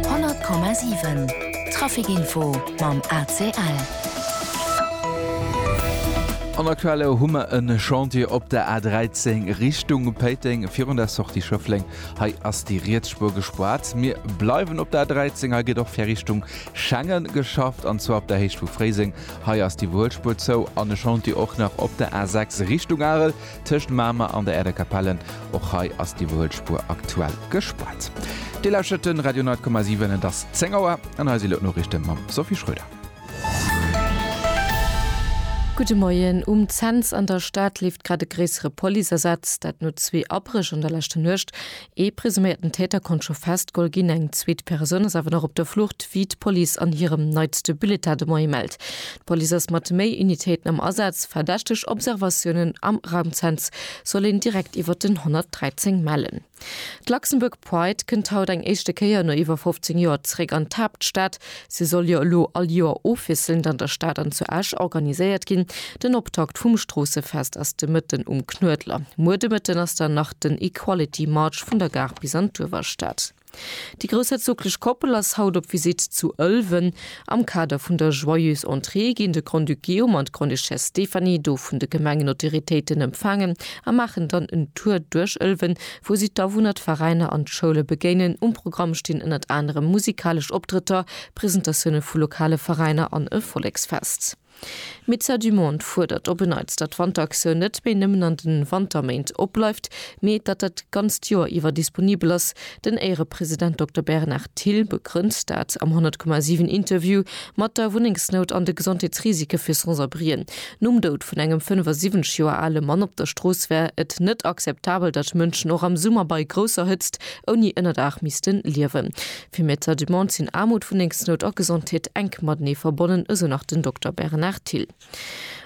100,7 Traficinfo mam ACL. An der Quelle hu mer e Chantier op der A13 Richtung Péiteng virun der Sortie Schëffleng. Hei ass déi riets Spuer gespaart. Mir bleiwen op der A13, hei gëtt och fir Richtung Schengen geschafft, an zwar op der Héicht vu Fréiseng. Hei ass d'Iwwerhuelspuer zou an e Chantier och nach op der A6 Richtung Arel. Tëscht Mamer an der Aerder Kapelle, och hei ass d'Iwwerhuelspuer aktuell gespaart. Dir lauschert de Radio 9,7, et ass 10 Auer an hei si elo d'Noriichte mam Sophie Schröder. Gudde Moien. Um Cents an der Stad leeft grad e gréissere Policeasaz, dat no zwee Abréch an der leschter Nuecht. Ee presuméierten Täter konnt scho festgeholl ginn, eng zweet Persoun ass awer nach op der Flucht, wéi d'Police an hirem neitste Bulletin de Moie mellt. D'Police ass mat méi Unitéiten am Asaz. Verdächteg Observatiounen am Raumzenz soll een direkt iwwer den 113 mellen. D'Luxembourg Pride kënnt haut eng éischte Kéier no iwwer 15 Joer zeréck an d'Haaptstad. Se soll jo elo all Joer ofwiesselnd an der Stad an zu Esch organiséiert ginn. Den Optakt vum Stroossefest ass de Mëtten um Knuedler. Muer de Mëtten ass dann nach den Equality March vun der Gare bis an d'Uewerstad. Déi groussherzoglech Koppel ass haut op Visitt zu Ëlwen. Am Kader vun der Joyeuse Entrée ginn de Grand-Duc Guillaume an d'Grande-Duchesse Stéphanie do vun de Gemengenautoritéiten empfaangen a maachen dann en Tour duerch Ëlwen, wou si d'Awunner, d'Veräiner an d'Schoule begéinen. Um Programm stinn ënnert anerem musikalesch Optrëtter, Presentatioune vu lokale Veräiner an e Volleksfest. D'Médecins du Monde fuerdert op en Neits, datt d'Wanteraktioun net méi nëmmen an de Wanterméint opbleift, mee datt dat ganzt Joer iwwer disponibel ass. Den Éierepresident Dokter Bernard Thill begrënnt dat am 100,7 Interview mat der Wunnengsnout an de Gesondheetsrisike fir Sans-abrien. Nom Doud vun engem 75 Joer ale Mann op der Strooss wär et net akzeptabel, datt Mënschen och am Summer bei grousser Hëtzt ouni Ënnerdaach misste liewen. Fir Medecin du Monde sinn Aarmut, Wunnengsnout a Gesondheet enk matenee verbonnen, esou nach den Dokter Bernard Thill.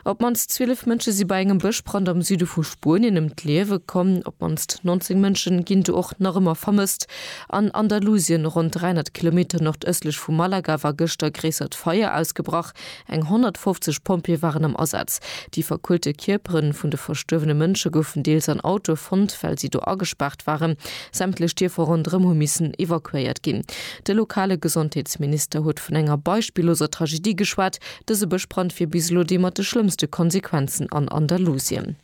Op d'mannst 12 Mënsche si bei engem Bëschbrand am Süde vu Spuenien ëm d'Liewe komm. Op d'mannst 19 Mënsche ginn do och nach ëmmer vermësst. An Andalusien, ronn 300 Kilometer nordëstlech vu Malaga, war gëschter gréissert Feier ausgebrach. Eng 150 Pompjeeë waren am Asaz. Déi verkuelte Kierpere vun de verstuerwene Mënsche goufen deels an Autoe fonnt, well si do agespaart waren. Sämtlech Dierfer ronderëm hu missen evakuéiert ginn. De lokale Gesondheetsminister huet vun enger beispilloser Tragedie geschwat. Dëse Bëschbrand wier bis elo dee mat de schlëmmste Konsequenzen an Andalusien.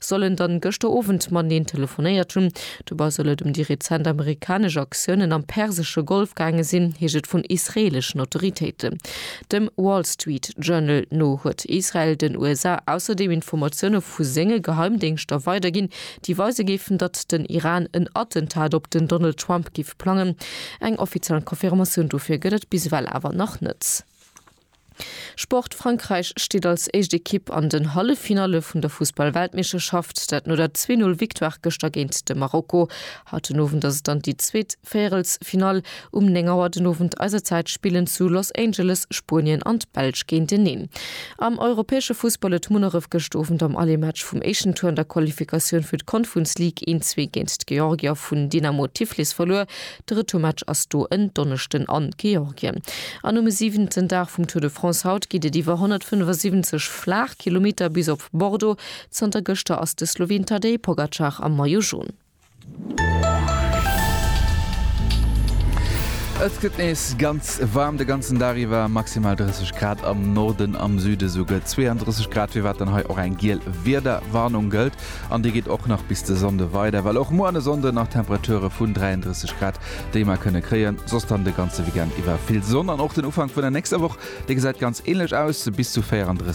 soll en dann gëschter Owend mateneen telefonéiert hunn. Dobei soll et ëm déi rezent amerikanesch Aktiounen am persesche Golf gaange sinn, heescht et vun israeleschen Autoritéiten. Dem Wall Street Journal no huet Israel den USA ausserdeem Informatioune vu senge Geheimdéngschter weiderginn, déi weise géifen, datt den Iran en Attentat op den Donald Trump géif plangen. Eng offiziell Confirmatioun dofir gëtt et bis ewell awer nach net. Sport, Frankräich steet als éischt Ekipp an den Halleffinalle vun der Fussball-Weltmeeschterschaft, dat no der 2-0 Victoire gëschter géint de Marokko. Haut den Owend ass et dann déi zweet Véierelsfinall. Um 9 Auer den Owend eiser Zäit spillen zu Los Angeles Spuenien an d'Belsch géinteneen. Am europäesche Fussball huet Munneref gëscht Owend am Aller-Match vum éischten Tour an der Qualifikatioun fir d'Confuns League een Zwee géint d'Georgier vun Dynamo Tiflis verluer. De Retourmatch ass do en Donneschden a Georgien. An um siwenten Dag vum Tour de France haut geet et iwwer 175 Flaachkilometer bis op Bordeaux. Zanter gëschter ass de Sloween Tadej Pogacar am Maillot Jaune. Et gëtt nees ganz waarm de ganzen Dag iwwer, maximal 30 Grad am Norden, am Süde souguer 32 Grad, firwat dann hei och eng giel Wiederwarnung gëllt. An déi geet och nach bis de Sonnde weider, well och muer an e Sonnde nach Temperature vun 33 Grad, déi mer kënne kréien. Soss dann de ganze Weekend iwwer vill Sonn an och den Ufank vun der nächster Woch, dee gesäit ganz änlech aus, bis zu 34.